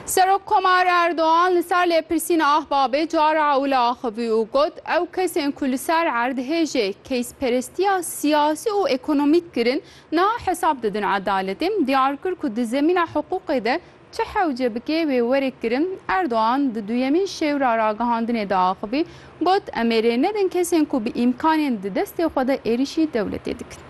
Serok Komar Erdogan li ser lêpirsîna Ahbabê cara ewle axivî û got, Ew kesên ku li ser erdhê jê keysperestiya siyasî û ekonomîk kirin, niha hesab didin edaletê. Diyar kir ku di zemîna hiqûqê de çi hewce bike wê were kirin. Erdogan di duyemîn şêwra ragihandinê de axivî got, Em ê rê nedin kesên ku bi îmkanên di destê xwe de êrîşî dewletê dikin.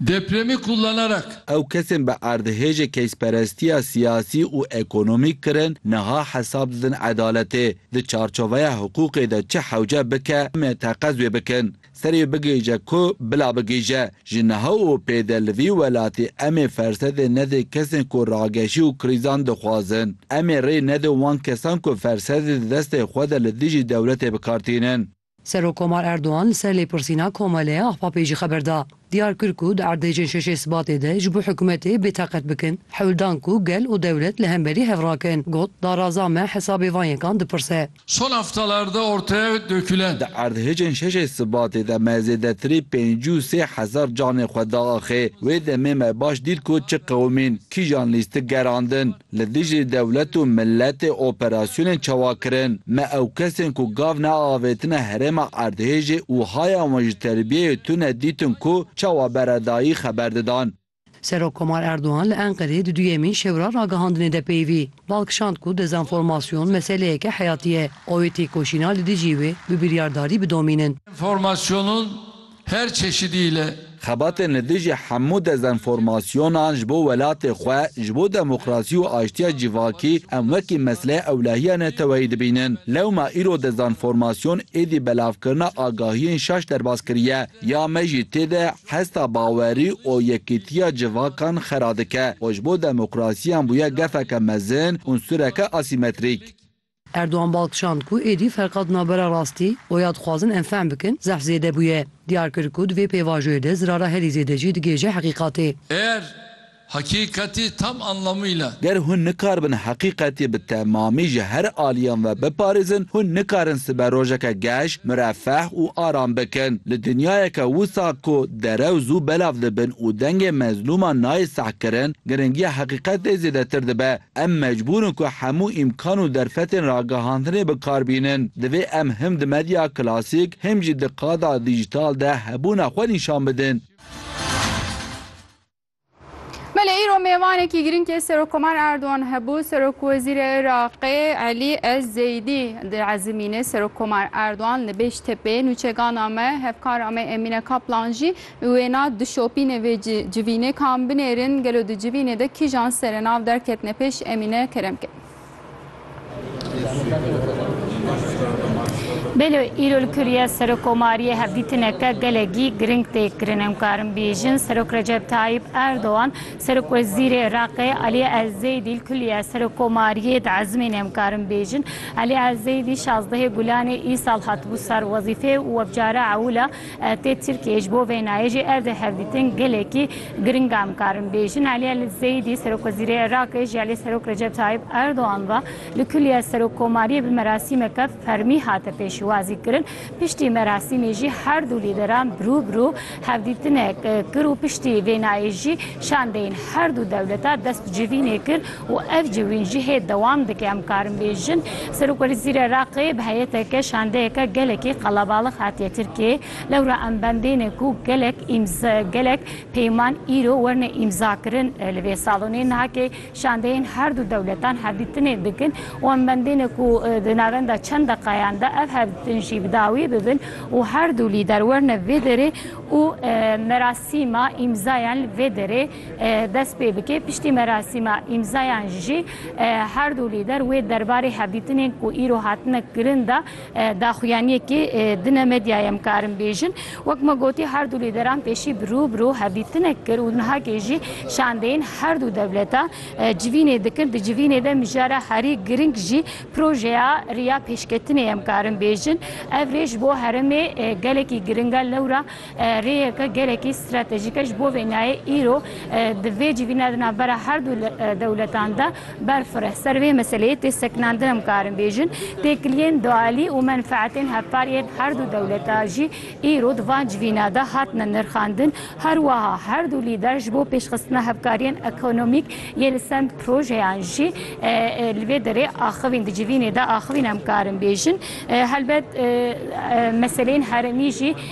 Depremî kullanarak. Ew kesên bi erdhêjê keysperestiya siyasî û ekonomîk kirin niha hesab didin edaletê di çarçoveya hiqûqê de çi hewce bike me teqez wê bikin serê wê bigihîje ku bila bigihîje ji niha û pêde li vî welatê em ê fersedê nedê kesên ku rageşî û krîzan dixwazin em ê rê nedin wan kesan ku fersedê di destê xwe de li dijî dewletê bikar tînin. Serokkomar Erdogan li ser lêpirsîna Komelê Ahbapê jî xeber da. Diyar kir ku di erdhêjên şeşê Sibatê de ji bo hikûmetê bêtaqet bikin, hewl dan ku gel û dewlet li hemberî hev rakin. Got, Daraza me hesabê van yekan dipirse. Son haftalarda ortaya dökülen. Di erdhêjên şeşê Sibatê de me zêdetirî pêncî û sê hezar canê xwe diaxê. Wê demê me baş dît ku çi qewimîn, kîjan lîstik gerandin. Li dijî dewlet û miletê operasyonên çawa kirin? Me ew kesên ku gav neavêtine herêma erdhêjê û haya wan ji terbiyeyê tune dîtin ku çawa beredayî xeber didan. Serokkomar Erdogan li Enqereyê di duyemîn şewra ragihandinê de peyivî bal kişand ku dezenformasyon meseleyeke heyatî ye, awê têkoşîna li dijî wê bi biryardarî bidomînin. Dezenformasyonun Her çeşidî li. Xebatên li dijî hemû dezenformasyonan ji bo welatê xwe, ji bo demokrasî û aştiya civakî em wekî mesleya ewlehiya neteweyî dibînin. Lewma îro dezenformasyon êdî belavkirina agahiyên şaş derbas kiriye. Ya me jî tê de hesta bawerî û yekîtiya civakan xera dike û ji bo demokrasiyan bûye gefeke mezin, unsureke asîmetrîk. Erdogan bal kişand ku êdî ferqa di navbera rastî û ya dixwazin em fehm bikin zehf zêde bûye. Diyar kir ku di vê pêvajoyê de zirara herî zêde jî digihêje heqîqatê. Eğer hakîkatî tam anlamıyla. Ger hûn nikaribin heqîqatî bi temamî ji her aliyan ve biparêzin, hûn nikarin sibe rojeke geş, mirefeh û aram bikin. Li dinyayeke wisa ku derew zû belav dibin û dengê mezlûman nayê sehkirin, giringiya heqîqatê zêdetir dibe. Em mecbûr in ku hemû îmkan û derfetên ragihandinê bi kar bînin. Divê em him di medya klasîk him jî di qada dîjîtal de hebûna xwe nîşan bidin. Belê îro mêvanekî girîngê Serokkomar Erdogan hebû. Serokwezîrê Iraqê Elî Ez Zeydî di Ezimînê Serokkomar Erdogan li Bêştepê, Nûçegana me, hevkara me Emîne Kaplan jî Wêna di şopînê vê civînê ka em binêrin gelo di civînê de kîjan serenav derketine pêş Emîne Keremke. Belo îro li Kirûye Serokomariyê hevdîtineke gelekî giring tê kirin. Em karin bêjin Serok Recep Tayîp Erdogan, Serokwezîrê Iraqê Elî Elzeydî li Kulîye Serokomariyê di ezmînê em karin bêjin Elî Elzeydî şazdehê Gulanê îsal hatibû ser wezîfê û webcare ewil e. Tê Tirkiyeyê ji bo vênayê jî ev di hevdîtin gelekî giring e. Em karin bêjin Elî El Zeyîdî Serokwezîrê Iraqê ji aliyê Serok Recep Tayîp Erdogan ve li kuliya Serokkomariyê bi merasîmeke fermî hate pêşwazîkirin. Piştî merasîmê jî her du lîderan bi rû bi rû hevdîtinek kir û piştî vênayê jî şandeyên her du dewleta dest bi civînê kir. û ev ji wî cihê dewam dike. Em karin bêjin Serokwezîrê Iraqê bi heyeteke şandeyeke gelekî qelebalix hatiye Tirkiyeyê, lewra em bendêne ku gelek gelek peyman îro werne îmzakirin li vê salonê. Niha kê şandeyên her du dewletan hevdîtinê dikin û em bendêne ku di navenda çend deqayan de ev hevdîtin jî bi dawî bibin û her du lîder werne vê derê û merasîma îmzayan li vê derê dest pê bike. Piştî merasîma îmzayan jî her du lîder wê derbarê hevdîtinên ku îro hatine kirin de daxuyaniyekê dine medyaya em karin bêjin. Wek me gotî her du lîderan pêşî bi rû bi rû hevdîtinek kir û nihakê jî şandeyên her du dewleta civînê dikin. Di civînê de mijara herî giring jî projeya riya pêşketinê em karin bêjin. Ev rê ji bo herêmê gelekî giringe lewra Rêyeke gelekî stratejîk e ji bo vê nayê îro di vê civîna di navbera her du dewletan de berfire. Ser vê meseleyê tê sekinandin em karin bêjin, têkiliyên dualî û menfeetên hevpar yên her du dewleta jî îro di van civîna de hatine nirxandin. Her wiha her du lîder ji bo pêşxistina hevkariyên ekonomîk yê li send projeyan jî li vê derê axivîn di civînê de axivîn em karin bêjin. Helbet meseleyên herêmî jî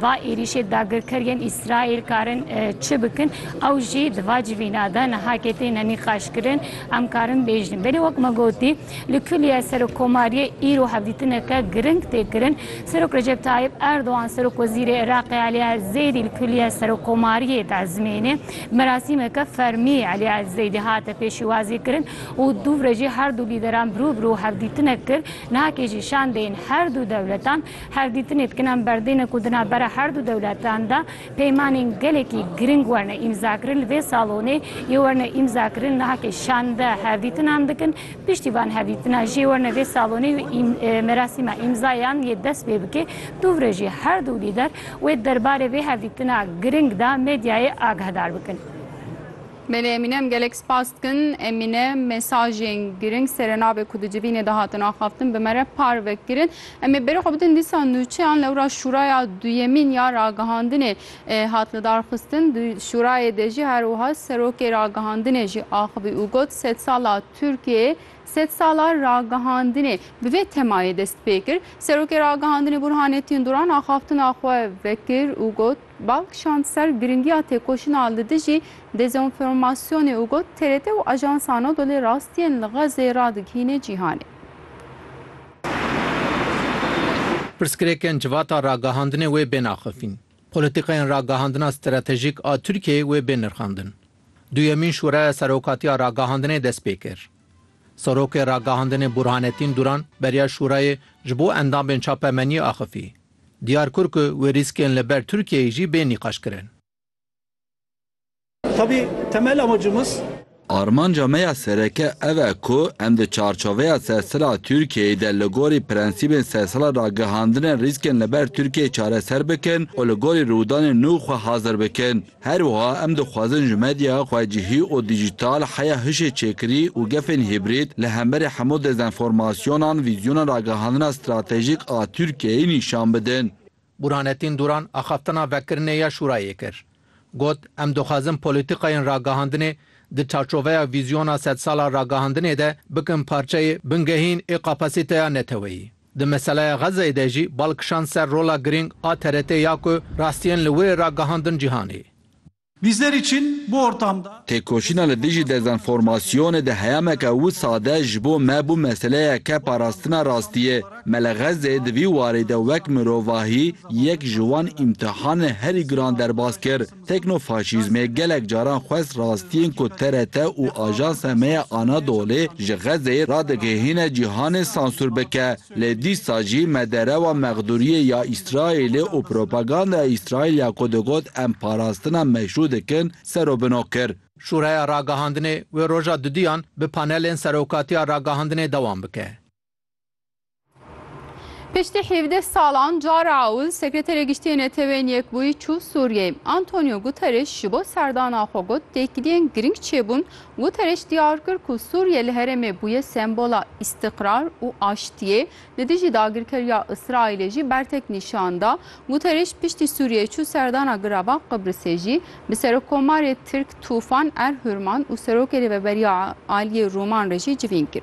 Va êrîşê dagirker yên Îsraîl karin çi bikin ew jî di va civîna de niha kê têne nîqaşkirin em karin bêjin. Belê wek me gotî li kulîye Serokkomariyê îro hevdîtineke giring tê kirin. Serok Recep Tayyip Erdogan Serokwezîrê Iraqê Elî Elzeydî li kulîye Serokkomariyê dezmênê. Merasîmeke fermî Elî Elzeydî hate pêşîwazîkirin û dûvre jî herdu lîderan birû birû hevdîtinek kir. Niha kê jî şandeyên herdu dewletan Hevdîtinê dikinan berdêne ku di navbera her du dewletan de peymanên gelekî giring werne îmzakirin. Li vê salonê yê werne îmzakirin nahekê şande hevdîtinan dikin. Piştî van hevdîtina jê werne vê salonê û merasîma îmzayan yê dest pê bike. Dûvre jî her du lîder wê derbarê vê hevdîtina giring de medyayê agahedar bikin. Belê Emîne em gelek spas dikin. Emîne mesajên giring serenavê ku di civînê de hatin axaftin bi me re parve kirin. Em ê bêrê xwe bidin dîsa nûçeyan lewra şûraya duyemîn ya ragihandinê hat lidarxistin. Di şûrayê de jî her wiha serokê ragihandinê jî axivî û got sedsala Tirkiyeyê sedsala ragihandinê bi vê temayê dest pê kir. Serokê ragihandinê Burhanettin Duran axaftina xwe vekir û got bal kişand ser giringiya têkoşina li dijî dezînformasyonê û got TRT û Ajans Anadolû rastiyên li Xezê radigihîne cîhanê. Pirsgirêkên civata ragihandinê wê bên axifîn. Polîtîkayên ragihandina stratejîk a Tirkiyeyê wê bên nirxandin. Duyemîn Şûreya Serokatiya Ragihandinê dest pê kir. Serokê Ragihandinê Burhanetîn Duran beriya Şûrayê ji bo endamên çapemeniyê axifî. Diyar kir ku wê rîskên li ber Tirkiyeyê jî bên nîqaşkirin. Tabi temel amacımız. Armanca me ya sereke ev e ku em di çarçoveya sersila Tirkiyeyê de li gorî prensîbên sersila ragihandine rîskên li ber Tirkiyeyê çareser bikin û li gorî rûdanên nû xwe hazir bikin. Her wiha em dixwazin ji medyaya xwecihî û dîjîtal, heya hişê çêkirî û gefên hîbrîd li hemberî hemû dezenformasyonan vîzyona ragihandina stratejîk a Tirkiyeyê nîşan bidin. Burhanettin Duran axaftina vekirinê ya Şûrayê kir. Got, Em dixwazin polîtîkayên ragihandinê di çarçoveya vîzyona sed sal a ragihandinê de bikin parçeyê bingehîn ê kapasîteya neteweyî. Di meseleya Xezzeyê de jî bal kişand ser rola girîng a TRT ya ku rastiyên li wir ê ragihandin cîhanê. Bizler için bu ortamda. Têkoşîna li dijî dezenformasyonê di heyameke wisa de ji bo me bû meseleyeke parastina rastiyê. Me li Xezzeyê di vî warî de wek mirovahî yek ji wan îmtihanên herî giran derbas kir. Teknofaşîzmê gelek caran xwest rastiyên ku TRT û ajansa me ya Anadolê ji Xezzeyê radigihîne cîhanê sansûr bike. Lê dîsa jî me derewa mexdûriyê ya Îsraîlê û propagandaya Îsraîl ya ku digot em parastina meşrû dikin serobino kir. Şûreya Ragihandinê wê roja duduyan bi panelên Serokatiya Ragihandinê dewam bike. Piştî hevdeh salan cara ewil Sekreterê Giştî Neteweyên Yekbûyî çû Sûriyeyê. Antonio Guterres ji bo serdana xwe got têkiliyên girîng çêbûn Guterres diyar kir ku Sûriye li herêmê bûye sembola îstiqrar û aştiyê, li dijî dagirkeriya Îsraîlê jî bertek nîşan da. Guterres piştî Sûriyeyê çû serdana girava Qibrisê jî bi serokkomarê Tirk Tûfan Erhurman û serokê Rêveberiya Aliyê Rûman re jî civîn kir.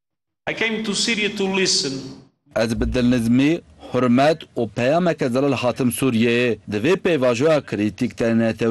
I came to Syria to listen. Ez bi dilnizmî, hurmet û peyameke zelal hatim Sûriyeyê. Di vê pêvajoya krîtîk de NTV